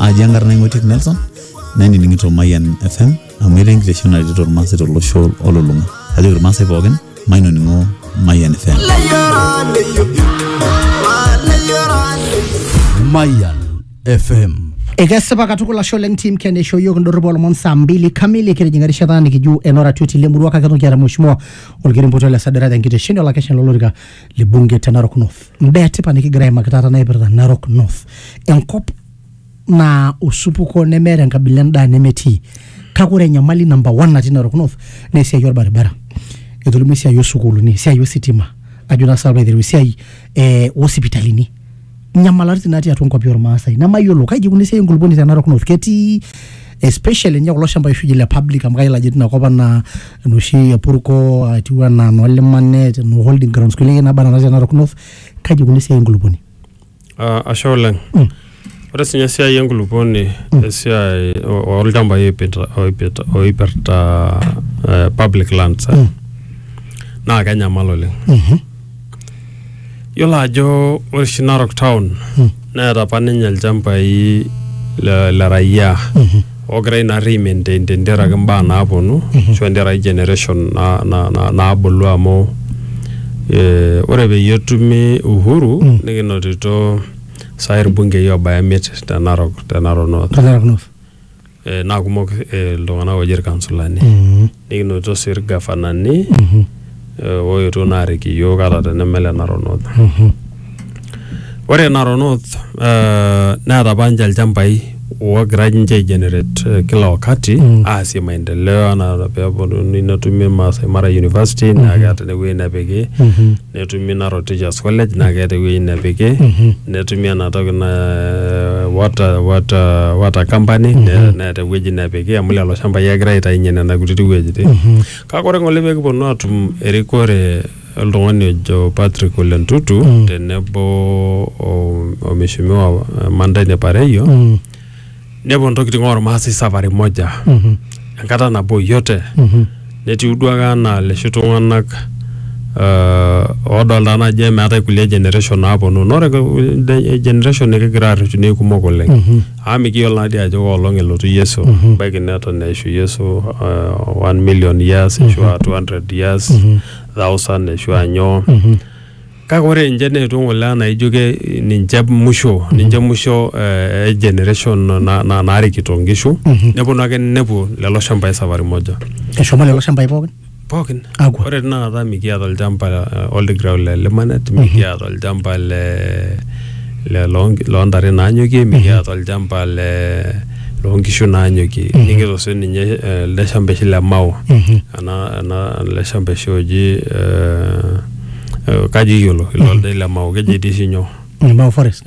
aji enkarna ing'otiek nelson nainining'ito mayian fm amu etaa enkitesheni naretito irmaasai tolosho olulung'a ajoki irmaasai pookin mainoning'o mayian fm Mayan FM. ekesipa katukul ashe oleng tim ken eishoo yiok indorrip olomon saa mbili kamili kitijing'a erishata nikiju enoratioti lemurua kake toki aata mheshimiwa olkerenpoto le sadara tenkitesheni olakeshani lolorika libunge te Narok North. Mbaa etipat nikigira aimaki taata naipirta Narok North, enkop naa osupuko nemeeta enkabila endaa nemetii kake ore enyamali namba one natii Narok North naa esiai orbaribara etolimuo esiai osukuuluni esiai ositima ajo naa sinanu piilo aitereu esiai eh osipitalini nyamalaritin natii atua nkwapi ormaasai nemayiolo kaji ikuna esiai enkulupuoni te Narok North ketii especially ninye kulo shambai oshi le public amu kayiolo ajo tinakop anaa enoshi e Purko atiu anaa noo Limanet noo holding grounds kulie ake naba nena te Narok North kaji ikuna esiai enkulupuoni Ah, ashe oleng ore sinye esiai enkulupuoni esiai o- olchambai oipita- oipita- oipirta eh, public lands eh, naa kenyamal oleng Yiolo ajo ore oshi Narok town neeta apa ninye ilchambai le, le raia ogirai naa rri maintain tenteraki imbaa naaponu ashu tenteraki generation na, na, na, naabulu amu eh, ore peyie etumi uhuru nikinotito sai irbungei obaya imiet te Narok, te Narok north. Te Narok North. eh, naa kumok eh, iltung'anak ooji irkansulani Mm. nikinotito sii irgafanani Mhm. eh, ooetuo naa arik iyiook ata teneme le Narok North Mhm. ore Narok North eh, neeta apa ninche ilchambai oogira ninche aigenerate eh, kila wakati Mm. aasie maendeleo anaa peeponunui netumi Maasai Mara University naa keeta inewueji nepiki Mhm. netumi Narok Teachers College naa keeta ewueji nepiki netumi ena toki na water, water, water company ne- neeta ewueji nepiki amu lelo shambai egira aitainye nena kutiti wuejitin kake ore ng'ole pekiponu atum erikore oltung'ani ojo Patrick Ole Ntutu tenebo o- o mheshimiwa Mandaini Pareio nepuo ntokitin ormaasai safari moja Mhm. enkata nabo yote Mhm. netiu duake anaa leshi tung'anak uh, oodolta naji emeetae kulie generation naaponu nore de- generation nikigira arreshu naa kumok oleng Mhm. amu mikiyiolo naadi ajo koolong elotu yesu Mhm. baiki neton eishu yesu uh, 1 million years ashu a 200 years Mhm. thousand ashu anyoo Mhm. Kake ore ninche neetuo ng'ole naa ijo ke ninche musho ninche musho eh, e generation na- na- naarikito nkishu neponu ake nepuo lelo shambai safari moja eshomo lelo shambai pookin pookin Akwa. ore tinakata mikiata olchamba eh, old ground le limanet mikiata olchamba le le loo- loontare naanyokie mikiata olchamba le loonkishu naanyokie nikito sii ninye eh, ele shamba oshi le mao ena ena ele shamba oshi oji eh, Eh, kaji iyiolo ilo ildai le Mao keji etii oshi nyoo Mau Forest.